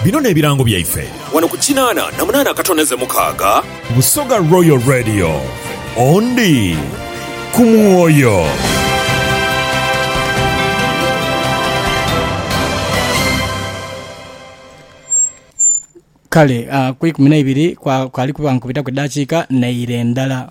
Bino n'ebirango byaife. Wano ku kinaana na munaana akatondeze mukaaga. Busoga Royal Radio, ondi ku mwoyo. Kale, ah, ku ikumi na ibiri kwa- kwali kuba nkubitaku edaakiika naire ndala.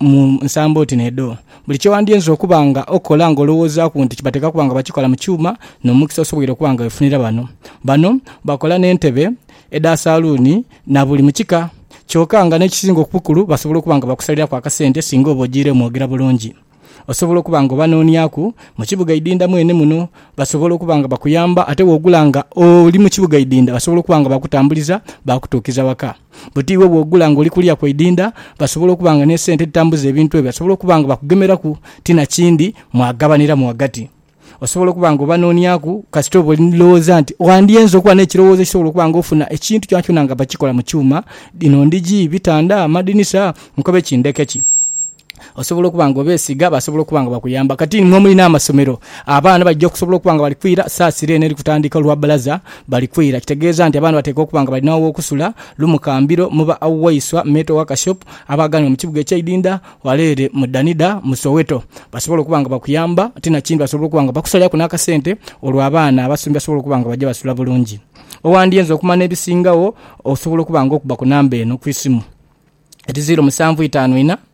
mu nsambo oti n'edho. Buli kye wandiyinza okuba nga okola nga olowoozaaku nti kibateeka kuba nga bakikola mu kyuma, n'omukisa osoboire okuba nga wefunira bano. Bano bakola n'entebe, edha saluuni na buli mu kika. Kyoka nga n'ekisinga obukulu basobola okuba nga bakusaliraku akasente singa oba ojiire mwogera bulungi. Osobola okuba nga obanooniaku mu kibuga Idinda mwene muno. Basobola okuba nga bakuyamba ate wogula nga oli mu kibuga Idinda basobola okuba nga bakutambuliza baakutuukiza waka. Buti iwe bw'ogula ng'oli kuliya ku idinda, basobola okuba nga n'esente edhitambuza ebintu ebyo basobola okuba nga bakugemeraku ti na kindi mwagabaniramu ghagati. Osobola okuba nga obanooniaku kasita oba oli ni lowooza nti wandyenze okuba n'ekirowoozo ekisobola okuba nga ofuna ekintu kyonakyona nga bakikola mu kyuma, dhino ndhigi, bitanda, amadinisa, nkobe ki ndheke ki. Osobola okuba nga obeesiga, basobola okuba nga bakuyamba. Kati ni mwe muli n'amasomero, abaana baija okusobola okuba nga bali kwira saasira eno eri kutandika olwa bbalaza, bali kwira. Kitegeeza nti abaana bateekwa okuba nga balina aw'okusula, lumu kambiro mu ba Waiswa Metal Workshop abaaganibwa mu kibuga eky'e Idinda wala ere mu Danida mu Soweto. Basobola okuba nga bakuyamba. Ti na kindi basobola okuba nga bakusaliraku n'akasente olwo abaana abasomi basobole okuba nga baija basula bulungi. Owandyenze okumanya ebisingawo, osobola okuba nga okuba ku namba eno ku isimu, eti ziiro musanvu itaanu ina,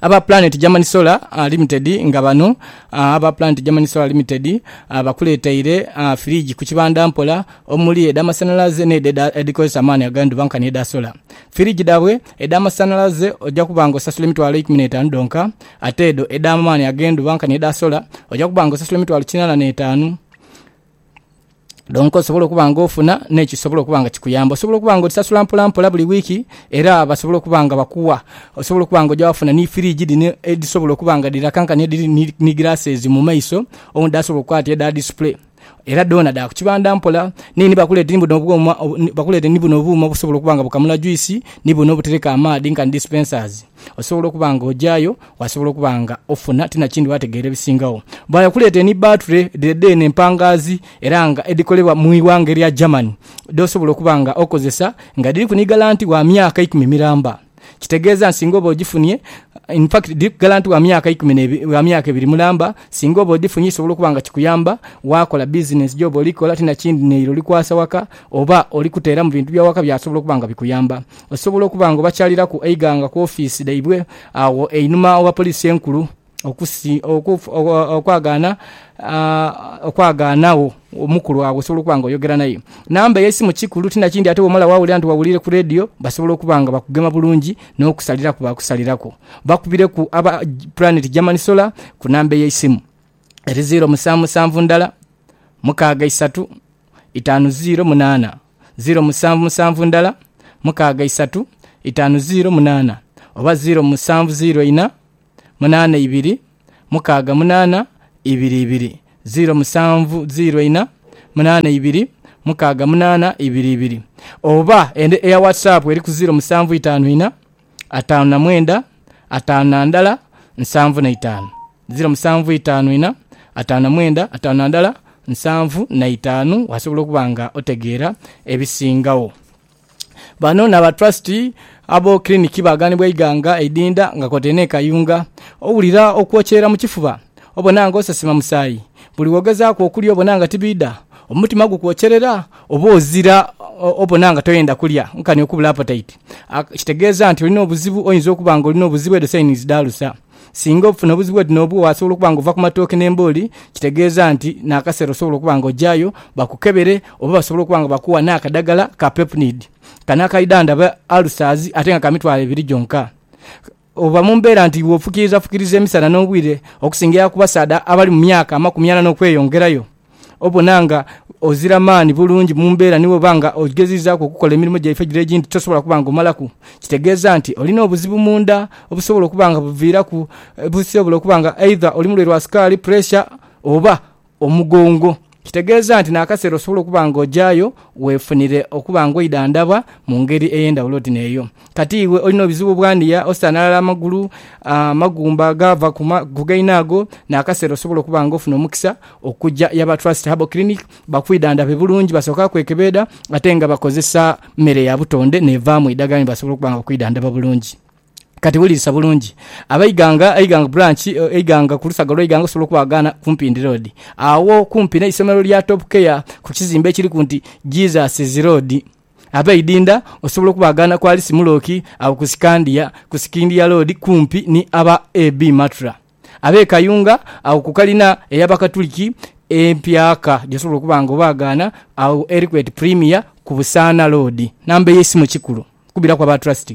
aba Planet Germany Solar Limited nga bano aba Planet Germany Solar Limited bakuleteire firiji ku kibanda mpola omuli edhamasanhalaze n'edho edhikozesa amaani ag'endhuba nkani edha sola. Firiji dhaabwe edhamasanhalaze oja kuba nga osasula emitwalo eikumi n'etaanu dhonka ate edho edh'amaani ag'endhuba nkani edha sola oja kuba nga osasula emitwalo kinaana n'etaanu. Donka osobola okuba nga ofuna n'ekisobola okuba nga kikuyamba. Osobola okuba nga odhisasula mpolampola buli wiiki era basobola okuba nga bakuwa. Osobola okuba nga oja wafuna ni firiji dhino edhisobola okuba nga dhira kankani edhiri ni glasses mu maiso owundi asobola okukoba ati edha display. Era dhoona dha ku kibandha mpola. Naye ni bakuleete ni buno obwoma, bakuleete ni buno obuuma obusobola okuba nga bukamula juice, ni buno obutereka amaadhi nka dispensers. Osobola okuba nga ojayo, wasobola okuba nga ofuna, ti nakindi wategeera ebisingagho. Bwaya kuleeta eni baature dhire dheene empangaazi era nga edhikolebwa mu ighanga erya Germany dh'osobola okuba nga okozesa nga dhiriku ni galanti wa myaka ikumi miramba. Kitegeeza nti singa oba ogifunie, in fact dhiriku galanti wa myaka ikumi n'ebiri, wa myaka ebiri mulamba, singa oba odhifunye kisobola okuba nga kikuyamba waakola bizinensi gy'oba oli kola ti nakindi n'eira oli kwasa waka oba oli kuteeramu bintu bya waka byasobola okuba nga bikuyamba. Osobola okuba nga obakyaliraku eighanga ku ofiisi dhaibwe agho einhuma ogha Poliisi Enkulu okwagaana okwagaanagho omukulu agho osobola okuba nga oyogera naye. Namba y'eisimu kikulu ti nakindi ate bw'omala waawulira nti wawuliire ku leediyo basobola okuba nga bakugema bulungi n'okusaliraku baakusaliraku. Bakubireku aba Planet German Solar ku namba ey'eisimu eri ziiro musanvu musanvu ndala mukaaga isatu itaanu ziiro munaana. ziiro musanvu musanvu ndala mukaaga isatu itaanu ziiro munaana oba ziiro musanvu ziiro ina munaana ibiri mukaaga munaana ibiri ibiri ziiro musanvu ziiro ina munaana ibiri mukaaga munaana ibiri ibiri oba eya WhatsApp eri ku ziiro musanvu itaanu ina ataanu na mwenda, ataanu na ndala, nsanvu na itaanu. Ziro musanvu itaanu ina, ataanu na mwenda, ataanu na ndala, nsanvu na itaanu. Wasobola okuba nga otegeera ebisingagho. Bano n'aba Trust abo kiliniki baaganibwa eighanga eidinda nga kwotaire n'e Kayunga. Owulira okwokyera mu kifuba? Obona nga osesema musaayi? Buli w'ogezaaku okulya obona nga tibiidha? Omutima gukwokyerera? Oba ozira obona nga toyenda kulya nkani okubula apatayiti, kitegeeza nti olina obuzibu. Oyinza okuba ng'olina obuzibu, edho sayinizi dha alusa. Singa ofuna obuzibu oti n'obwo, wasobola okuba ng'ova ku matooke n'embooli, kitegeeza nti n'akaseera osobola okuba ng'ogyaayo bakukebere oba basobola okuba nga bakuwa n'akadagala ka pepnid. Kano akaidhandha alusaazi ate nga ka mitwalo ebiri gyonka. Oba mu mbeera nti iwe ofukiirizafukiriza emisana n'obwire okusingaia ku basaadha abali mu myaka amakumi ana n'okweyongerayo, obona nga ozira maani bulungi mu mbeera ni bw'oba nga ogezizaaku okukola emirimo gyaife egiro egindi tosobola kuba nga omalaku, kitegeeza nti olina obuzibu mu nda obusobola okuba nga buviiraku busobola okuba nga eidha oli mulwaire wa sukaali, puresha, oba omugongo, kitegeeza nti n'akaseera osobola okuba nga ogyayo weefunire okuba nga oidhandhabwa mu ngeri ey'endhawulo oti n'eyo. Kati iwe olina obuzibu bwa niya, osanhalala amagulu, amagumba agaava ku gaine ago, n'akaseera osobola okuba nga ofuna omukisa okuja ya ba Trust Herbal Clinic bakwidhandhabe bulungi. Basooka kwekebeedha ate nga bakozesa mere ya butonde n'evaamu eidhagala ni basobola okuba nga bakwidhandhaba bulungi. Kati wulirisa bulungi. Aba Iganga, Iganga Branch, Iganga ku lusaga lwa Iganga osobola okubaghagana ku Mpindi Road. Agho kumpi n'eisomero lya Top Care ku kizimbe ekiriku nti Jesus' Road. Aba Idinda osobola okubaghagana ku Alice Mulooki agho ku Scandia, ku Scindia Road kumpi ni aba AB Matra. Ab'e Kayunga agho ku kalina ey'Abakatuliki empyaka gy'osobola okuba nga obaghagana agho eriku eti Premier ku Busaana Road. Namba ey'eisimu kikulu kubiraku aba Trust.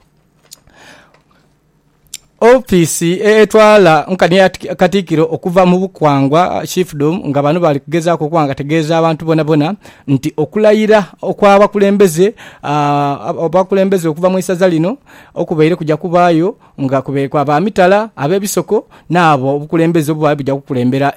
Ofiisi etwala nkani ya Katikiro okuva mu bukwangwa Chiefdom nga bano bali kugezaako okuba nga tegeeza abantu bonabona nti okulayira okw'abakulembeze abakulembeze okuva mu isaza lino okubaire kuja kubaayo nga kubaire kwa ba mitala, ab'ebisoko n'abo obukulembeze obubaire buja kukulembera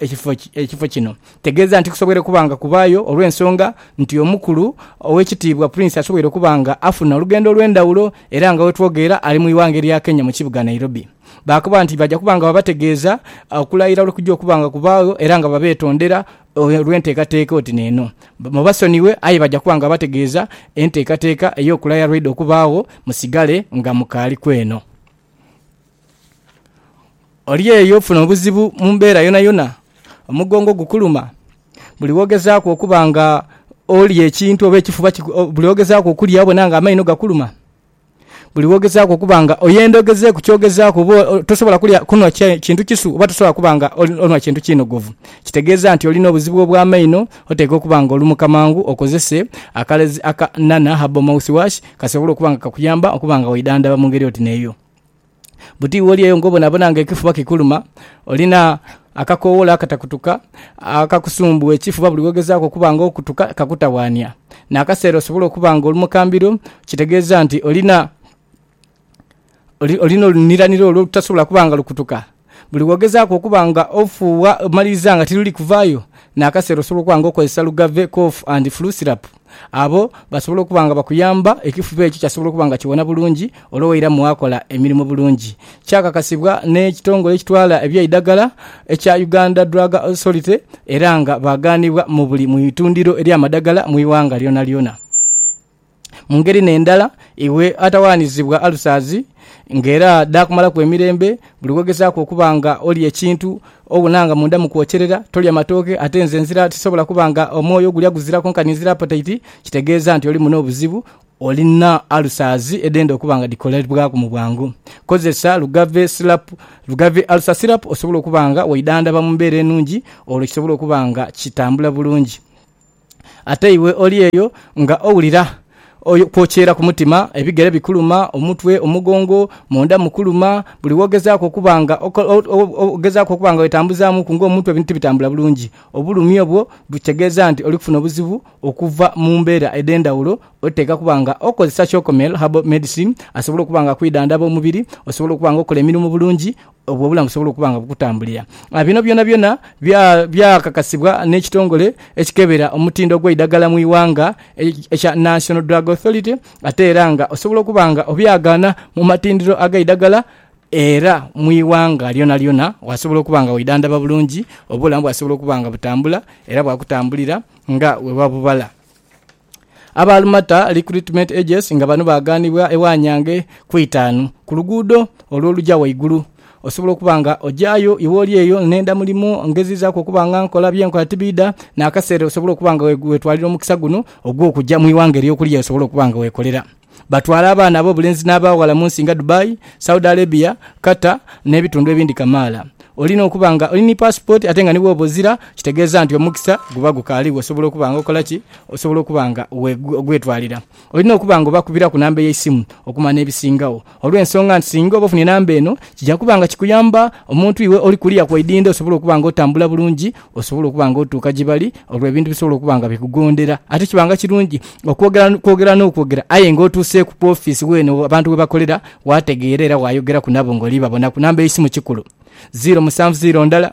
ekifo kino. Tegeeza nti kusoboire okuba nga kubaayo olw'ensonga nti Omukulu Ow'ekitiibwa Prince asoboire okuba nga afuna olugendo olw'endhawulo era nga wetwogeera ali mu ighanga erya Kenya mu kibuga Nairobi. Baakoba nti baja kuba nga babategeeza okulayira olwekuja okuba nga kubaagho era nga babeetondera olw'enteekateeka oti n'eno. Mubasonighe aye baja kuba nga babategeeza enteekateeka ey'okulayira lwaidha okubaagho musigale nga mukaaliku eno. Oli eyo ofuna obuzibu mu mbeera yonayona? Omugongo gukuluma? Buli wogezaaku okuba nga olya ekintu oba ekifuba kiku... Buli wogezaaku okulya obona nga amaino gakuluma? Buli wogezaaku okuba nga oyenda ogezeeku kyogezaaku oba tosobola kulya, kunhwa kintu kisu oba tosobola kuba nga onhwa kintu kinogovu, kitegeeza nti olina obuzibu obw'amaino. Oteekwa okuba nga olumuka mangu okozese akalezi aka Nana Herbal Mouthwash kasobole okuba nga kakuyamba okuba nga weidhandhaba mu ngeri oti n'eyo. Buti iwe oli eyo ng'obonabona ng'ekifuba kikuluma, olina akakoowolo akatakutuka akakusumbuwa ekifuba buli w'ogezaaku okuba ng'okutuka kakutawaania. N'akaseera osobola okuba ng'oli mu kambiro, kitegeeza nti olina olina oluniranira olwo olutasobola kuba nga lukutuka. Buli w'ogezaaku okuba nga ofuuwa omaliriza nga tiruli kuvaayo, n'akaseera osobola okuba nga okozesa Lugave Cough and Flu Syrup. Abo basobola okuba nga bakuyamba, ekifuba ekyo kyasobola okuba nga kiwona bulungi olwo wairamu waakola emirimo bulungi. Kyakakasibwa n'ekitongole ekitwala eby'eidagala ekya Uganda Drug Authority era nga baagaanibwa mu buli mu itundiro ery'amadagala mu ighanga lyonalyona. Mu ngeri n'endala, iwe ataghanizibwa alusazi nga era dhaakumalaku emirembe, buli w'ogezaaku okuba nga olya ekintu obona nga munda mukwokyerera, tolya matooke, ate nze nzira tisobola kuba nga omwoyo ogulya guziraku nkani nzira apataiti, kitegeeza nti olimu n'obuzibu, olina alusazi edhenda okuba nga dhikolebwaku mu bwangu. Kozesa Lugave Syrup, Lugave Ulcer Syrup, osobole okuba nga weidhandhaba mu mbeera enungi olwo kisobole okuba nga kitambula bulungi. Ate iwe oli eyo nga owulira okwokyeera ku mutima, ebigere bikuluma, omutwe, omugongo, munda mukuluma, buli w'ogezaaku okuba nga ogezaaku okuba nga wetambuzaamuuku ng'omutwe ebintu tibitambula bulungi. Obulumi obwo kitegeeza nti oli kufuna obuzibu okuva mu mbeera edh'endhawulo. Oteekwa kuba nga okozesa Chocomel Herbal Medicine asobole okuba nga akwidhandhaba omubiri, osobole okuba nga okola emirimu bulungi, obwo obulamu busobola okuba nga bukutambulira. Bino byonabyona byakakasibwa n'ekitongole ekikebera omutindo gw'eidagala mu ighanga ekya National Drug Authority ate era nga osobola okuba nga obyagaana mu matindiro ag'eidagala era mu ighanga lyonalyona wasobola okuba nga weidhandhaba bulungi, obulamu bwasobola okuba nga butambula era bwakutambulira nga bwewa bubala. Aba Almata Recruitment Agency nga bano baaganibwa ewa Nyange ku itaanu ku luguudo olwo oluja waigulu. Osobola okuba nga ojayo iwe oli eyo nenda mulimu ngezizaku okuba nga nkola byenkola tibidha nakasera osobola okuba nga wetwalira omukisa guno ogwokuja mwiwanga eryokulya lyosobola okuba nga wekolera. Batwala abaana ab'obulenzi n'abaaghala mu nsi nga Dubai, Saudi Arabia, Qatar n'ebitundu ebindi kamaala. Olina okuba nga oli ni paasipooti ate nga ni bw'oba ozira kitegeeza nti omukisa guba gukaaligho osobola okuba nga okola ki? Osobola okuba nga ogwetwalira. Olina okuba nga obakubiraku namba y'eisimu okumanya n'ebisingagho. olw'ensonga nti singa oba ofunye namba eno kija kuba nga kikuyamba omuntu iwe oli kuliya ku idhindha osobole okuba nga otambula bulungi osobole okuba nga otuuka gye bali olwo ebintu bisobole okuba nga bikugondera. Ate kiba nga kirungi okwogera kwogera n'okwogera aye nga otuuseeku ku ofiisi weene abantu we bakolera waategeera era waayogeraku nabo ng'oli babonaku. Namba y'eisimu kikulu, ziiro musanvu ziiro ndala,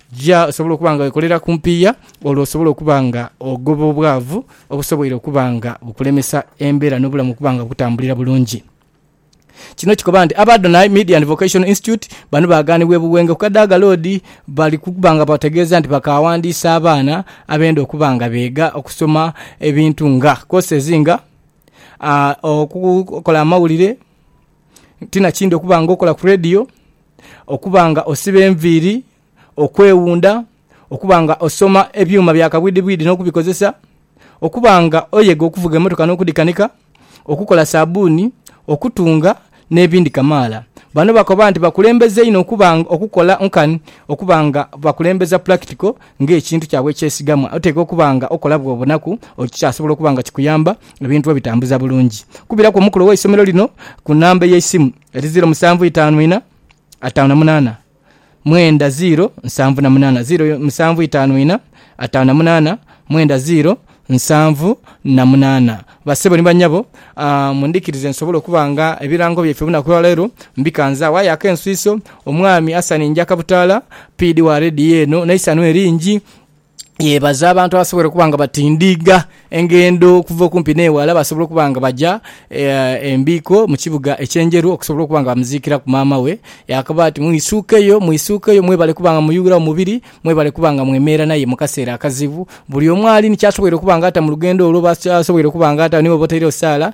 Jia osobole okuba nga wekolera ku mpiiya olwo osobole okuba nga ogoba obwavu obusoboire okuba nga bukulemesa embeera n'obulamu okuba nga bukutambulira bulungi. Kino kikoba nti aba Adonai Media and Vocational Institute bano baaganibwa e Buwenge ku Kadaga Road bali kuba nga bategeeza nti bakaawandiisa abaana abenda okuba nga beega okusoma ebintu nga courses nga okukola amawulire, ti na kindi okuba nga okola ku radio, Okuba nga osiba enviiri, okwewunda, okuba nga osoma ebyuma bya kabwidhibwidhi n'okubikozesa, okuba nga oyega okuvuga emmotoka n'okudhikanika, okukola saabbuuni, okutunga n'ebindi kamaala. Bano bakoba nti bakulembeza inho okuba nga okukola nkani okuba nga bakulembeza pulakitiko ng'ekintu kyabwe ekyesigamwa. Oteekwa okuba nga okola bw'obonaku okikyasobola okuba nga kikuyamba ebintu obitambuza bulungi. Kubiraku omukulu ow'eisomero lino ku namba ey'eisimu. Eri ziiro musanvu itaanu ina ataanu na munaana mwenda ziiro nsanvu na munaana ziiro musanvu itaanu ina ataanu na munaana mwenda ziiro nsanvu na munaana. Basebo ni banyabo, ah, mundhikirize nsobole okuba nga ebirango byaife olunaku lwa leero mbikanzagho. Aye ak'enswiso, Omwami Asani Njakabutaala, PD wa leediyo eno, n'eisanhu eringi. yebaza abantu abasobola okuba nga batindiiga engendo okuva okumpi n'eghala basobola okuba nga baja e Mbiiko mu kibuga eky'Enjeru okusobola okuba nga bamuziikiraku maama we. Yakoba ati, Mwisuukeyo, mwisuukeyo mwebale kuba nga muyughiragho mubiri, mwebale kuba nga mwemeera naye mu kaseera akazibu. Buli omu ali ni ky'asoboire okuba nga ata mu lugendo olwo, oba asoboire okuba nga ata ni bw'oba otairegho saala,